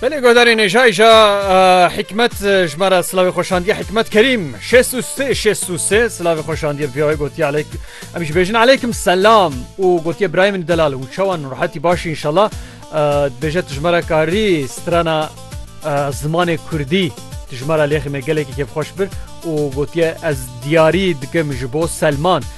Belê godarê nêjayja hikmet ji me re silavê xweşandiye hikmet kerîm şêsê silavê xweşandiye viyayê gotiye alek em ji bêjin aleykim selam û gotiye birayê min delal û çawan rahetî başî inşallah dibêje tijmera karî strana zimanê kurdî tijmera lêxî me gelekî kêfxweş bir û gotiye ez diyarî dikim ji bo selman.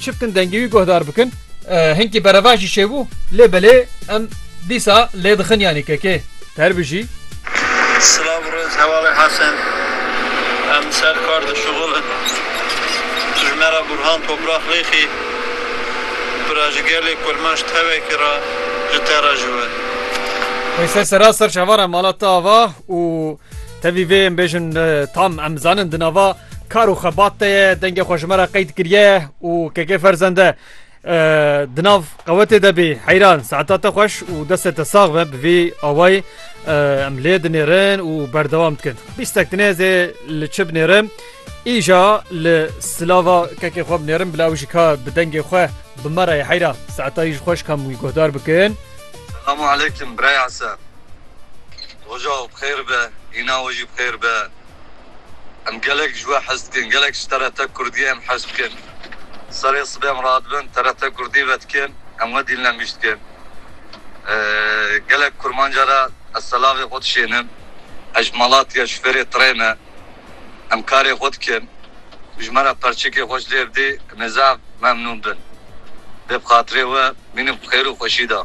Çiftin dengê wî guhdar bikin. Hinkî berevan jî çêbû. Lê belê em dîsa lê dixin yanî kekê. Ter bijî. Silav rêz hevalê Hesen. Em li ser kar dişuxul in. Tu ji me re Burhan Toprax Lêxî bira ji gelê Kurmanc tevekî re ji te re ji we. Wê ser sera ser çavara mala te ava û tevî vê em bêjin tam em zanin di nava Kar û xebat te ye dengê xwe ji me re qeyd kiriye û keke ferzende di nav qewetê de bî heyran saeta te xweş û destê te sax be bi vî awayî em lê dinêrin û berdewam dikin bîstek dinêzê li çi binêrim îja li silava kekê xwe binêrim bila ew jî ka bi dengê xwe bi me re heyra saeta ji xweş kam wî guhdar bikin Selamu aleykum biraya se Roja xêr be îna wê jî xêr be Em gelek ji we hez dikin. Gelek ji TRT Kurdiyê em hez dikin. Serê sibê em radibin TRT Kurdî vedikin. Em we dîlnemîş dikin. Gelek kurmanca re ez selavê xwe dişênim. Ez ji Malatya ji fêrê trê me. Em karê xwe dikin. Tu ji me re perçikê xwe ji lê bidî nêzaf memnûn bin. Dê bi xatirê we bînim xêr û xweşî da.